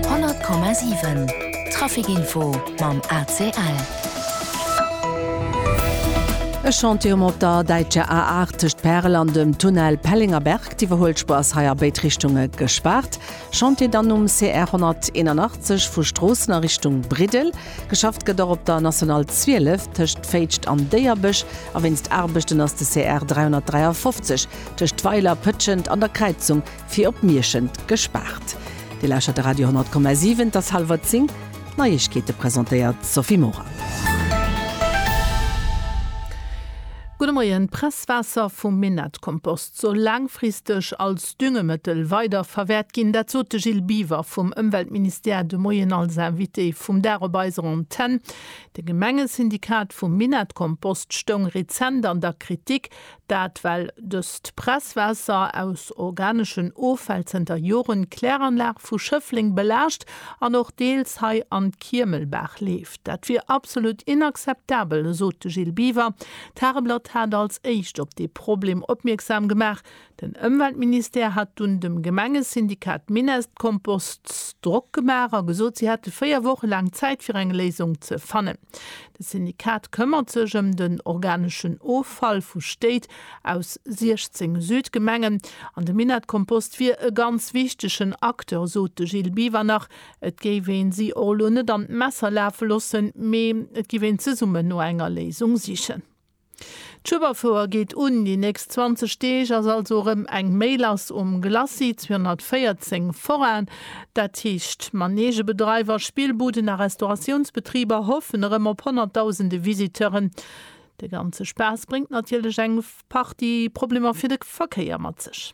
100,7 Trafic-Info mam ACL. E Chantier um op der däitscher A8 tëscht Pärel an dem Tunnel Pellengerberg. D'Iwwerhuelspur ass hei a béid Richtunge gespaart. Chantier dann um CR 181 vu Stroossen a Richtung Briddel. Geschafft gëtt och op der National 12 tëscht Féitscht an Déierbech a wéinst Aarbechten ass de CR 353 tëscht Weiler, Pëtschent an der Kräizung Fir op Mierschent gespaart. Dir lauschtert de Radio 10,7, et ass hallwer zéng. D'Neiegkeete presentéiert d'Sophie Morang. Gudde Moien, D'Presswaasser vum Minett-Kompost soll laangfristeg als Düngemëttel weiderverwäert ginn. Dat sot de Gilles Biver vum Ëmweltministère de Moien als Invité vum Dag op eiser Antenn. De Gemengesyndikat vum Minett-Kompost stoung rezent an der Kritik, Dat well dëst Presswaasser aus organeschen Offäll zënter Joren d'Kläranlag vu Schëffleng belaascht an och deels hei an d'Kiemelbaach leeft. Dat wier absolut inakzeptabel, sot de Gilles Biwer. D'Tageblatt hat als éischt op dee Problem opmierksam gemaach. Den Ëmweltministère hat dunn dem Gemengesyndikat Minest Composts Drock gemaach a gesot, si hätte véier Woche laang Zäit fir eng Léisung ze fannen. De Syndikat këmmert sech ëm den organeschen Offall vu Stéit aus 16 Südgemengen. An de Minett-Kompost wier e ganz wichtegen Acteur, sot de Gilles Biwer nach. Et géif ee si och elo net an d'Messer lafe loossen, mee et giff een zesummen no enger Léisung sichen. D'Schueberfouer geet un déi nächst 20 Deeg, ass also erëm eng méi lass um Glacis 214 Forain. Dat heescht, Manegebedreiwer, Spillbuden a Restauratiounsbetriber hoffen erëm op honnertdausende Visiteuren. De ganze Spaass bréngt natierlech eng Partie Problemer fir de Verkéier mat sech.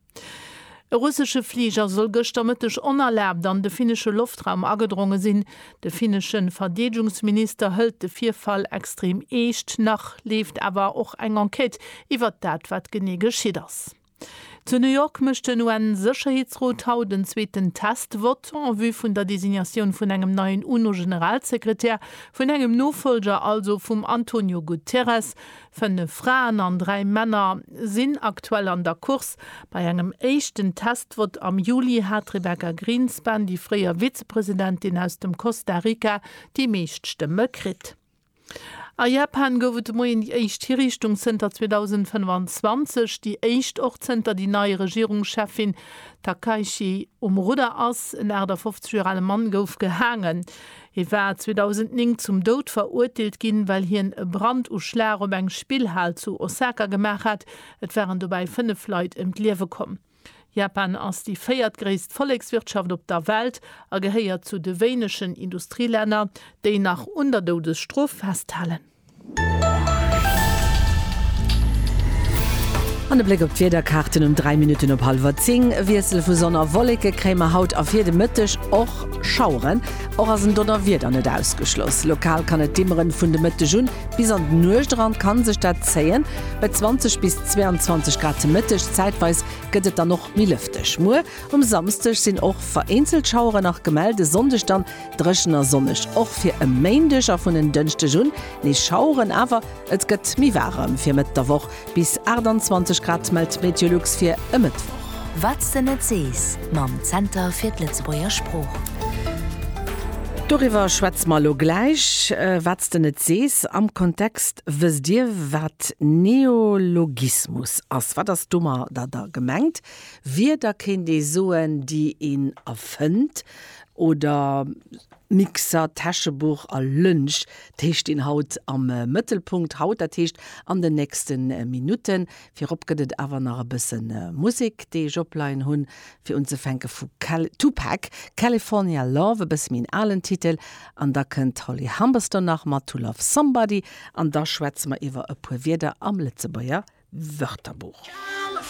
E russesche Fliger soll gëschter Mëtteg onerlaabt an de finnesche Loftraum agedronge sinn. De finnesche Verdeedgungsminister hëlt de Virfall extrem eescht. Nach leeft awer och eng Enquête iwwert dat, wat genee geschitt ass. Zu New York mécht den UN-Sécherheetsrot haut en zweeten Test-Vott en vue vun der Designatioun vun engem neien UNO-Generalsekretär, vun engem Nofolger also vum Antonio Guterres. Fënnef Fraen an dräi Männer sinn aktuell an der Course. Bei engem éischten Testvott am Juli hat d'Rebecca Grynspan, déi fréier Vizepresidentin aus dem Costa Rica, déi meescht Stëmme kritt. A Japan gouf et de Moien déi éischt Hiriichtung zënter 2025, déi éischt och zënter déi nei Regierungscheffin Takaichi um Rudder ass. En 58 Joer ale Mann gouf gehaangen. Hie war 2009 zum Doud verurteelt ginn, well hien e Branduschlag op eng Spillhal zu Osaka gemaach hat. Et waren dobäi fënnef Leit ëm d'Liewe komm. Japan ass déi véiertgréisst Vollekswirtschaft op der Welt a gehéiert zu de wéinegen Industrielänner, déi nach un der Doudesstrof festhalen. An e Bléck op d'Wiederkaarten um 3 Minutten op hallwer 10. E Wiessel vu Sonn a Wolleke kréie mer haut a fir de Mëtteg och Schaueren. Och ass en Donnerwieder net ausgeschloss. Lokal kann et dimmeren. Vun de Mëtteg un bis an d'Nuecht eran kann sech dat zéien, bei 20 bis 22 Grad ze Mëtteg. Zäitweis gëtt et dann och méi lëfteg. Muer um Samsdeg sinn och vereenzelt Schaueren nach gemellt, e Sonndeg dann Dréchen a sonneg och fir e Méindeg a vun en Dënschdeg un nees Schaueren, awer et gëtt méi waarem. Fir Mëtt der Woch bis 28 Grad mellt d'Meteolux fir e Mëttwoch. Wat s de net sees mam Zenter fir d'Lëtzebuerger Sprooch. Doriwwer schwätze mer elo gläich. Wat s de net sees am Kontext, Wësst Dir, wat Neologismus ass? Wat ass domadder gemengt? Wierder, kéint ee soen, déi een erfënnt, Oder Mixer, Täschebuch a Lënch, dat heescht deen haut am Mëttelpunkt. Haut, dat heescht an den nächste Minutten. Virop gëtt et awer nach e bësse Musek, déi ech opleien hunn. Fir unzefänke vu Tupac, California Love, e bësse méi en alen Titel. An da kënnt d'Holly Humberstone nach mat To Love Somebody. An da schwätze mer iwwer e puer Wierder am Lëtzebuerger Wörterbuch.